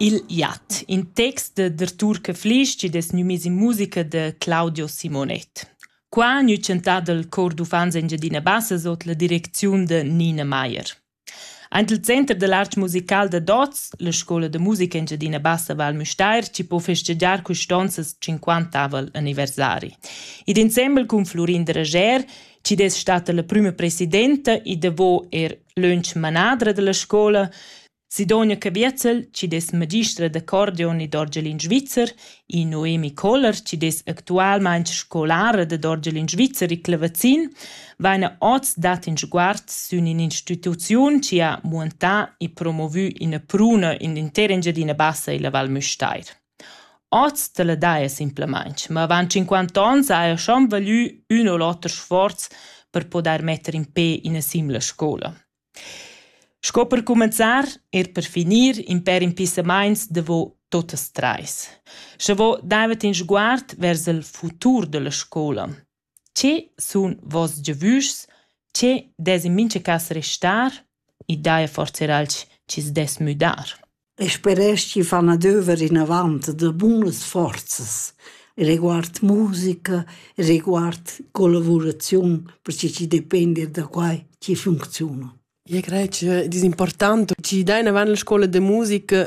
Il iat, in text da Turca Flisch chi'd es gnü miss in musica da Claudio Simonet. Qua gnü chantà dal Chor d'uffants Engiadina Bassa sot la direcziun da Nina Maier. Aint il center da l'art musical da Dots, la scoula da musica Engiadina Bassa Val Müstair, chi po festegiar custonzas 50aval anniversari. Id insembel cun Flurin Drager, chi'd es stata la prüma presidenta e davo er Lönch manadra dalla scoula Sidonia Caviezel chi dess magistra d'accordeon ed orgelin svizzer e Noemi Koller chi dess actualmaing scolara dad orgelin svizzer e clavazin vaina hoz dat ün sguard sün ün'instituziun chi ha muantà e promovü üna pruna in l'intera Engiadina Bassa illa Val Müstair. Oz tala daja simplamaing, ma avant tschinquanta ons haja schon valü ün u l'oter sforz per pudair metter in pe üna simla scoula. Sco per cumenzar, eir per finir, in pêr impissamaints davo tuottas trais. Scha vo davent in sguard vers il futur da la scoula. Che sun voss giavüschs? Che dess in mincha cas restar? I daja forsa eir alch chi's dess müdar? Eu speresch chi fan adöver inavant da bunas forzas riguard musica, riguard collavuraziun, perche chi depend eir da quai chi funcziuna. Eu craj ch'eu disimportant chi dain avant la scoula da musica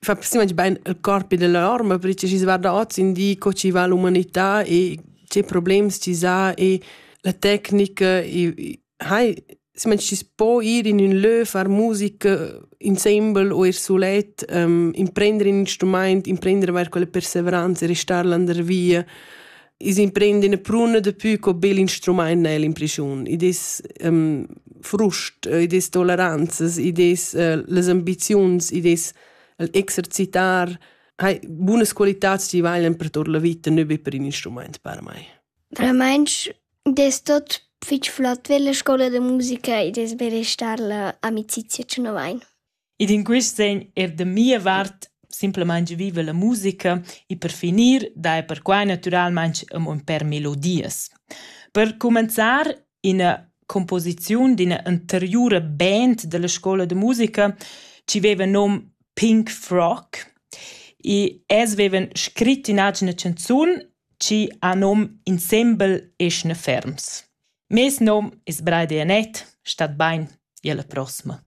fa semplamein bain il corp ed la orma, perche schi's guarda hoz in di co chi va l'umanità e che problems chi s'ha e la tecnica e hai semplamein schi's po ir in ün lö, far musica insembel o ir sulet, imprender ün instrumaint, imprender avair quella persevranza e restar là der via. is imprend in pruna de più co bel instrument nel in prigiun i des um, frust i des toleranzas i des uh, les ambiziuns i des exercitar hai buonas qualitats die valen per tot la vita ne be per in instrument per mai Remensch des tot fich flott per la scola de musica i des berestar la amicizia ce novain I d'ün quist sen eir da mia vart simplamaing viva la musica e per finir daja perquai natüralmaing amo ün pêr melodias. Per cumenzar üna cumposiziun d'üna anteriura band da la scoula da musica chi veiva nom Pink Frock e els veivan scrit ün'atgna chanzun chi ha nom Insembel eschna ferms. Meis nom es Braidi Anett, stat bain, i alla prossima.